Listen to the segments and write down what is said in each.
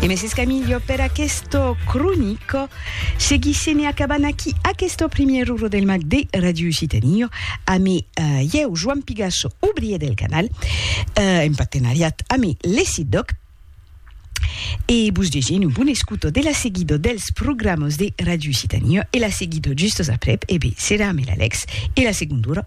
E mès escamilho per aquesto cronico, seguissene acabant aquí aquesto primièr uro del mag de Ràdio Occitània amé ieu Joan Pigasso, obrier del canal, en partenariat amé l'ECIDOC, e vos desene un bon escuto de la seguido dels programas de Ràdio Occitània e la seguido justos aprèp, e be, serà amé l'Alex e la segonda ora.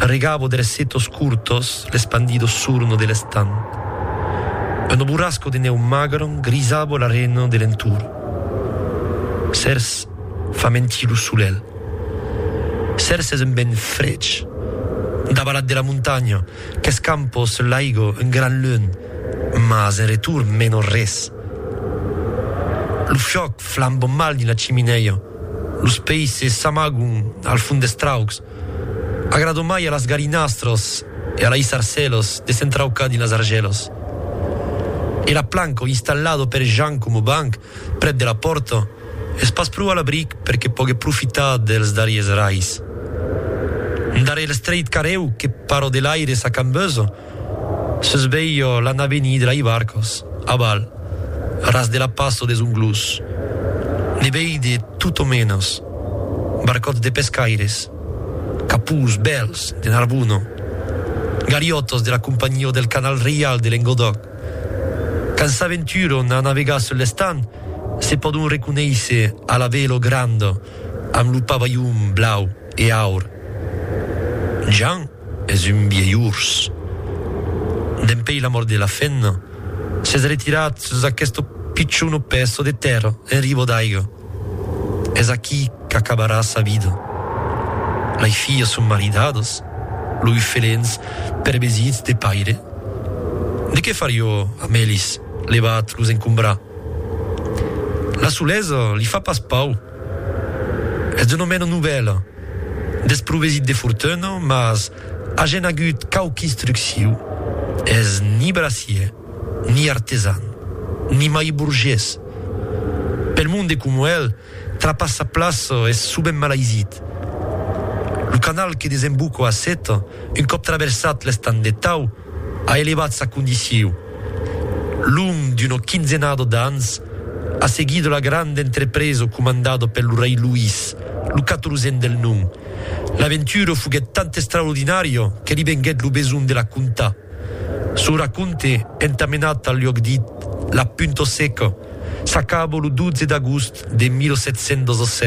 Arregabo de les setos curtos l'espandido surno de l'estan. Uno burrasco de nèu magron grisabo l'arena de l'entorn. Cers fa mentir lo solelh. Cers es un vent frech, davalat de la montanha, qu'escampa sus l'aigo un gran lunh, mas en retorn meno res. Lo fiòc flamba mal dins la chiminèia. Los peisses s'amagon al fond des traucs. Agrada mai a las galinastras e a lei sarcèlas de s'entraucar dins las argèlas. E la planca installada per Jan coma banc prèp de la pòrta es pas pro a l'abric per que pogue profitar dels darriers rais. Darrèr l'estreit carrèu que para de l'aire s'acambesa, Sus veio l'anaveni de lai barcos, aval, ras de la passo des Unglós, ne veide tot o menos, barcòts de pescaires, capús, bèls, de Narbona, galiòtos de la Companhió del Canal Reial de Lengodòc. Quand s'aventuron a navegar sul l'Estan, se pòdon reconéisser a la velo granda amb lo pavalhon blau. E aur, Jean es un vielh urs. Dempèi la mòrt de la fenna, s'es retirat sus aqueste pichonu pèso de tèrra en ribo d'aiga. Es aquí qu'acabarà sa vida. Lei filhas son maridadas, loi felens perbesits de paire. De qué far jo amb elis, levat los encombrar? La solesa li fa pas pau. Es un omena novèl, desprovesit de fortuna, mas agen agut quauqu instrucciu, es ni bracier, ni artesan, ni mai burgés. Pel monde coma el, trapar sa plaça es sovent malaisit. Lo canal que desemboca a Sèta, un còp traversat l'estang de Tau, a elevat sa condiciu, long d'una quinzenada d'ans, a seguir de la granda entrepresa comandada per lo rei Luís, lo catorzèn del nom. L'aventura foguèt tant extraordinària que li venguèt lo besonh de la contar. Son racònte, entamenat al luòc dit La Punta Seca, s'acaba lo 12 d'agost de 1717.